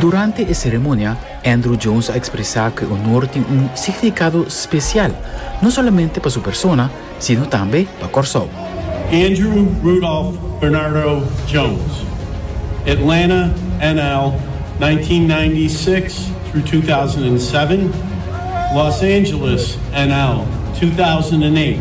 Durante e seremonia, Andruw Jones a ekspresá ku e onor tin un signifikado spesial, no solamente pa su persona, sino tambe pa Kòrsou. Andruw Rudolf Bernardo Jones, Atlanta, NL. 1996-2007, Los Angeles, NL. 2008.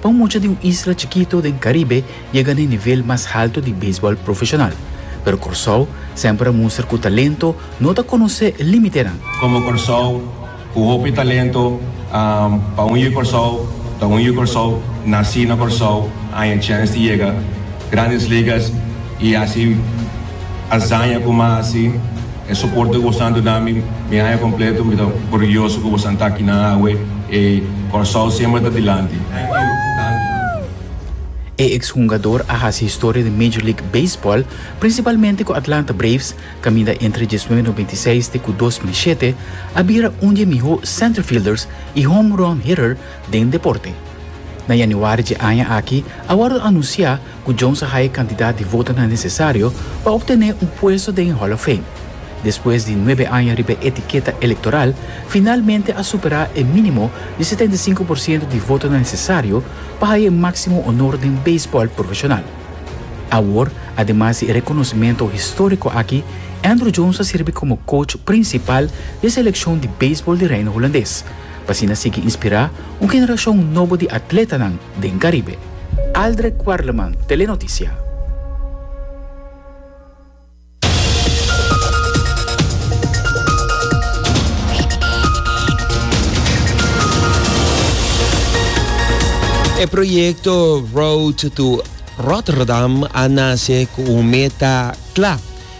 Pa un mucha di un isla chikitu den Karibe yega na e nivel mas haltu di beisbòl profeshonal. Pero Kòrsou semper a mustra ku talento no ta konosé límitenan. Komo Kòrsou ku hopi talento pa un yu Kòrsou ta un yu Kòrsou nasí na Kòrsou aña chèns di yega Grandes Ligas i hasi. Azaña ku mi a hasi, e soporte ku boso a duna mi, mi haña kompleto. Mi ta orguyoso ku boso a ta akinan awe. E Kòrsou semper ta dilanti. E eks hungador a hasi historia den Major League Baseball, prinsipalmente ku Atlanta Braves, kaminda entre diesnuebe nobenta i seis te ku dos mil i shete, a bira un di e mihó center fielders i home run hitter den deporte. Na yanüari dje aña aki a wòrdu anunsiá cu Jones a haya cantidad di votonan necesario pa obtene un puesto den e Hall of Fame. Despues di nuebe aña riba e etiqueta electoral, finalmente a supera e minimo di setenta i sinku por ciento di votonan necesario pa haya e maximo honor den baseball profesional. Awor, ademas di e reconocimento historico aki, Andruw Jones a sirbi como coach principal di e seleccion di baseball di Reino Hulandes, p'asina sigui inspira un generacion nobo di atletanan den Caribe. Aldre Quarleman, Telenoticia. E proyecto Road to Rotterdam a nace cu un meta cla,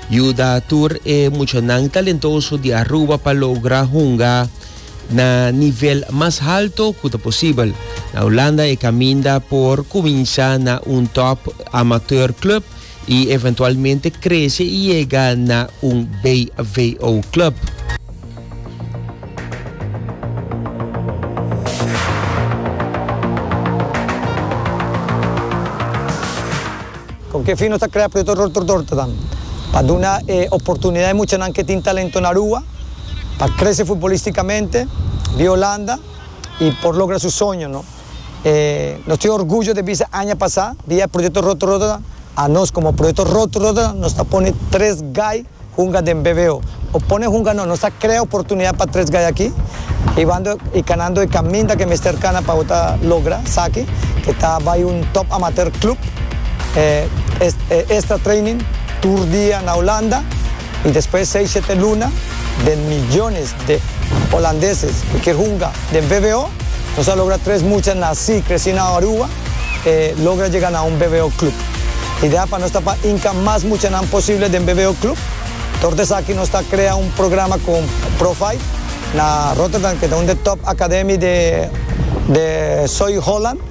yuda tur e muchanan talentoso di Aruba pa logra hunga Na nivel mas halto cu ta posibel. Na Hulanda e caminda por cuminsa na un top amateur club y eventualmente crece y yega na un BVO club. Con ke fin nos ta crea Proyecto Dorter Dorter dan? Pa duna e oportunidad e muchanan ke tin talento na rua. pa crece futbolísticamente di Holanda y por logra su soño no. Nos tin orgullo de bisa aña pasa di e proyecto Roto Rotterdam a nos como proyecto Roto Rotterdam nos ta pone tres gai hunga den BVO. O pone hunga no, nos ta crea oportunidad pa tres gai aki y wando y canando e caminda que mester cana pa bo ta logra saki que ta bai un top amateur club. Extra training tur dia na Holanda. y despues seis shete luna den millones de Holandeses cu kier hunga den VBO, nos a logra tres mucha naci, creci na Aruba e logra yega na un VBO club. Idea pa nos ta pa inca mas muchanan posible den VBO club. Tor desaki nos ta crea un programa con Provive na Rotterdam, cu ta un de top academy de Soy Holland.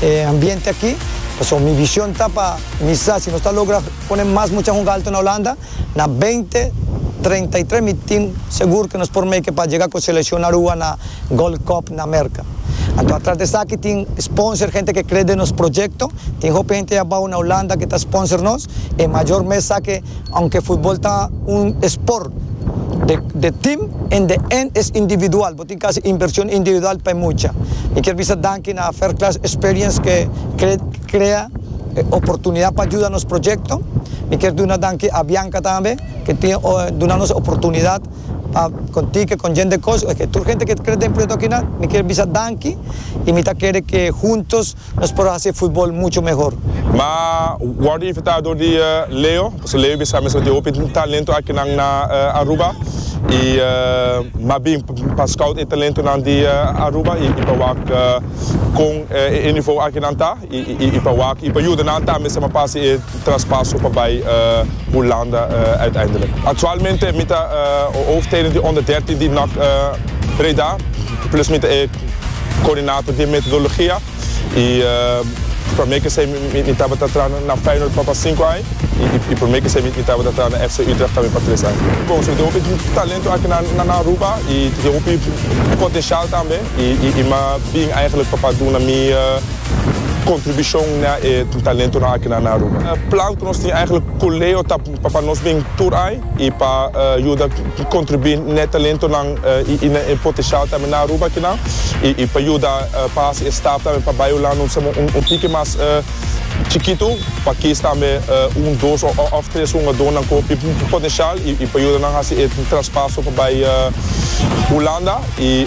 e ambiente aki, pasobra mi vision ta pa mi sa si nos ta logra pone mas mucha hunga alto na Holanda, na beinti treinta i tres mi tin segur ku nos por make pa jega ku selekshon na rua na Gold Cup na Merka. Anto atras di esaki tin sponsor, hente ku e kre den nos proyekto, tin hopi hente abou na Holanda ku ta sponsor nos, e mayor mes sa ku ounke futbol ta un esport de tim en de en es individual. No tin casi inversion individual pa e mucha. Mi kier bisa danki na First Class Experience ke crea e oportunidad pa juda nos projecto. Mi kier duna danki a Bianca tambe ke tin duna nos e oportunidad pa konti ke con Jende Koos. Tur hente ke ta kere den proyecto akinan mi kier bisa danki y mi ta kere ke huntos Nos por haci e futbol mucho mehor. M'a wordo invitado di Leo, pasobra Leo bisa mesora tin hopi talento akinan na Aruba y m'a bin pa scout e talentonan di Aruba y pa wak con e nivo akinan ta y pa wak y pa yuda nan tambe sa m'a pa haci e traspaso pa bay Hulanda uiteindelijk. Actualmente mi ta hoofdtrainer di onder dertien di NAC Breda, plus mi ta e. Coordinator di metodologia y prome que esey mi tabata tra na Feyenoord pa pa cinco aña y prome que esey mi tabata tra na FC Utrecht tambe pa tres aña. Bon so tin hopi talento aki na Aruba y tin hopi potencial tambe y mi a bin eigenlijk pa duna mi contribucion na e talentonan aki na Aruba. Plan cu nos tin eigenlijk cu Leo ta. Pa pa nos den tur ai i pa yuda kontribuí n'e talentonan i n'e potenshial tambe na Aruba akinan i pa yuda pa hasi e stap tambe pa bai Hulanda un sama un tiki mas chikitu pa kies tambe un dos òf tres hungadónan ku hopi potenshial i pa yuda nan hasi e traspaso pa bai Hulanda i.